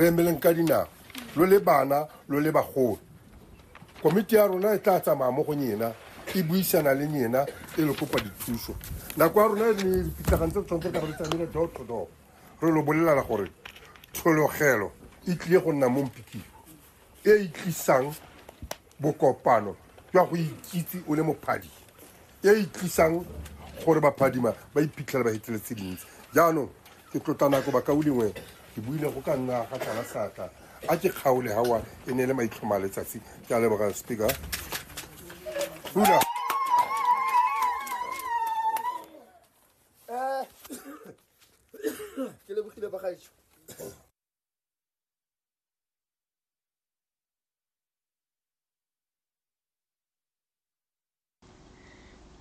re emeleng ka dinao lo le bana lo le bagolo komiti ya rona e tla tsamaya mo go nyena e buisana le nyena e le kopa dithuso nako ya rona e ne dipitlagane tse tshwanetse ka re tsamele door to door re lo bolelana gore tshologelo e tlile go nna mo mpikiwa e e tlisang Bokopano jwa go ikitse o le mophadi e e tlisang gore baphadima ba iphitlhela ba hetile tse dintsi jaanong ke tlotla nako bakao lengwe ke buile go ka nna ga tlala seatla a ke kgaole gawa e ne e le maitlhoma a letsatsi ke a leboga speaker Hula. ke lebogile bagaetsho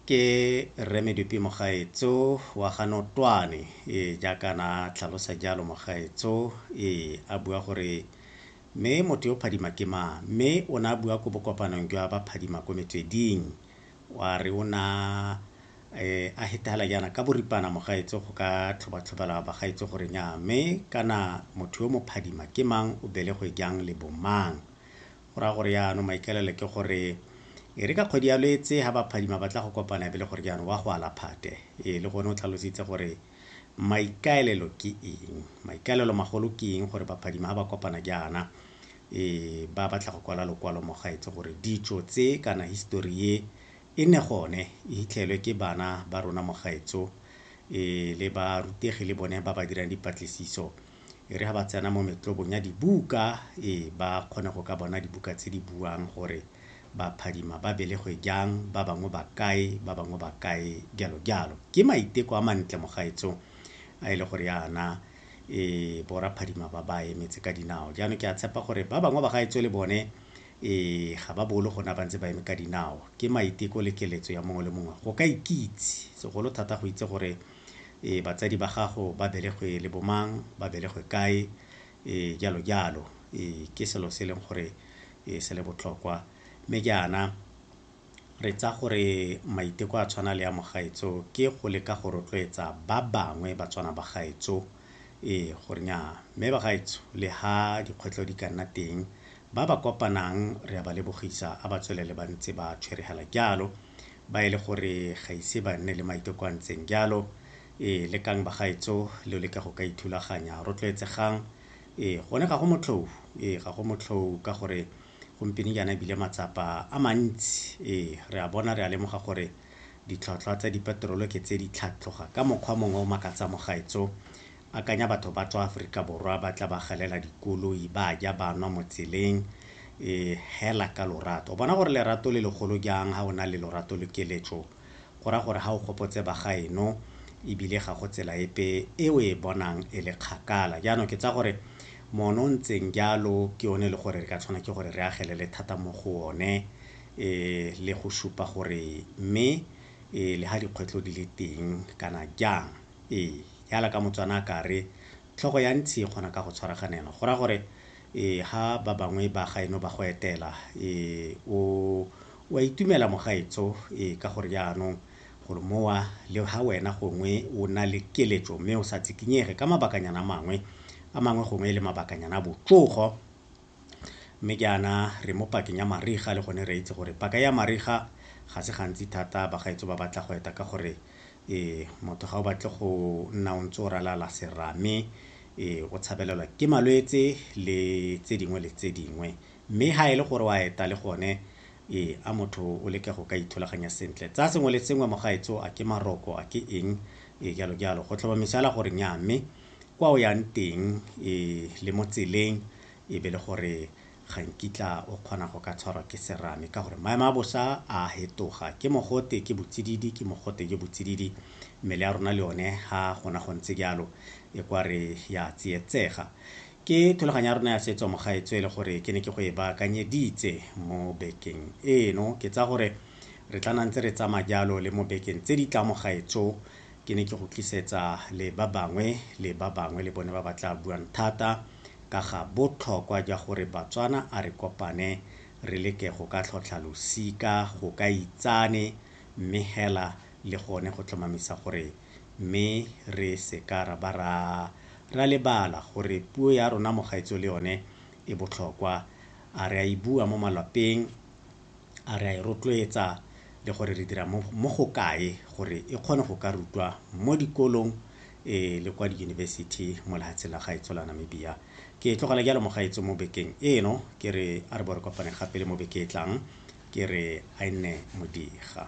Ke Rre Medupi mogaetso wa ga Notwane, ee, jaaka na a tlhalosa jalo mogaetso, ee, a bua gore, Mme motho yo phadima ke mang? Mme o ne a bua ko bokopanong jwa ba phadima ko metsweding. Wa re o ne a hetagala jaana ka boripana mogaetsho go ka tlhobatlhobela bagaetsho gore nyaa mme kana motho yo mophadima ke mang, o belegwe jang le bomang. Go raya gore jaanong maikaelelo ke gore e re ka kgwedi ya Lwetse ga baphadima ba tla go kopana e be le gore jaanong wa go ala phate. Ee, le gone o tlhalositse gore Maikaelelo ke eng? Maikaelelo magolo ke eng gore baphadima ha ba kopana jaana e ba batla go kwala lokwalo mo gaetse gore ditso tse kana history ye e ne gone e hitlhelwe ke bana ba rona mo gaetso e le ba rutegi le bone ba ba dirang dipatlisiso e re ha ba tsena mo metlobong ya dibuka e ba kgone go ka bona dibuka tse di buang gore ba phadima ba belegwe jang, ba bangwe ba kae, ba bangwe ba kae, jalo jalo. Ke maiteko a mantle mogaetsong a e le gore yana e bo raphadima ba ba emetse ka dinao jaanong ke a tshepa gore ba bangwe ba gaetso le bone e ga ba bolo gona ba ntse ba eme ka dinao ke maiteko le keletso ya mongwe le mongwe go ka ikitse segolo thata go itse gore e batsadi ba gago ba belegwe le bomang ba belegwe kae e jalo jalo e ke selo se e leng gore e se le botlhokwa. Mme jaana re tsa gore maiteko a tshwana le ya mogaetso ke go leka go rotloetsa ba bangwe ba tswana ba gaetso ee gore nya mme ba gaetso le ha dikgwetlho di ka nna teng ba ba kopanang re a ba lebogisa a ba tswelele ba ntse ba tshweregela jalo ba e le gore ga ise ba nne le maiteko a ntseng jalo ee lekang ba gaetso le leka go ka ithulaganya rotloetsegang Ee, gone ga go motlhou. Ee, ga go motlhou ka gore gompieno jaana ebile matsapa a mantsi. Ee, re a bona, re a lemoga gore ditlhwatlhwa tsa dipeterolo ke tse di tlhatloga ka mokgwa mongwe o makatsang mogaetso. Akanya batho ba tswa Aforika Borwa ba tla ba galela dikoloi, ba ja, ba nwa mo tseleng. Ee, hela ka lorato. O bona gore lerato le legolo jang ha o na le lorato le keletso. go raya gore ga o gopotse ba gaeno ebile ga go tsela epe e o e bonang e le kgakala. Jaanong ke tsaya gore mono o ntseng jalo ke yone e le gore re ka tshwana ke gore re agelele thata mo go one um le go supa gore mme um le ga dikgwetlho di le teng kana jang ee jaana ka Motswana a ka re tlhogo ya ntshi e kgona ka go tshwaraganelwa go raya gore um ga ba bangwe ba gaeno ba go etela um o O a itumela mogaetsho ee ka gore jaanong gore mowa le ha wena gongwe o na le keletšo mme o sa tsikinyege ka mabakanyana a mangwe a mangwe gongwe e le mabakanyana a botsogo mme jaana re mo pakeng ya mariga le gone re itse gore paka ya mariga ga se gantsi thata bagaetso ba batla go eta ka gore ee motho ga o batle go nna o ntse o ralala serame ee o tshabelelwa ke malwetse le tse dingwe le tse dingwe Mme ha e le gore o a eta le gone, ee, a motho o leke go ka ithulaganya sentle. Tsa sengwe le sengwe, mogaetso, a ke maroko, a ke eng, ee, jalo jalo, go tlhomamisa fela gore nnyaa. Mme kwa o yang teng, ee, le mo tseleng, e be le gore ga nkitla o kgona go ka tshwarwa ke serame, ka gore maemo a bosa a a fetoga. Ke mogote, ke botsididi, ke mogote jo botsididi. Mmele ya rona le yone, ha gona go ntse jalo, e kwa re ya tsietsega. Ke thulaganyo ya rona ya setso mogaetsho e le gore ke ne ke go e baakanyeditse mo bekeng eno. Ke tsaya gore re tla nna ntse re tsamaya jalo le mo bekeng tse di tlang mogaetsho. Ke ne ke go tlisetsa le ba bangwe le ba bangwe le bone ba ba tla buang thata ka ga botlhokwa jwa gore Batswana a re kopane re leke go ka tlhotlha losika, go ka itsane mme hela le gone go tlhomamisa gore mme re se ka ra ba ra ra lebala gore puo ya rona mogaetso le yone e botlhokwa a re a e bua mo malwapeng a re a e rotloetsa le gore re dira mo go kae gore e kgone go ka rutwa mo dikolong e le kwa diyunibesithi mo lehatsheng la gaetso la namibia ke e tlogela jalo mogaetso mo bekeng eno ke re a re bo re kopane gape le mo beke e tlang ke re a e nne modiga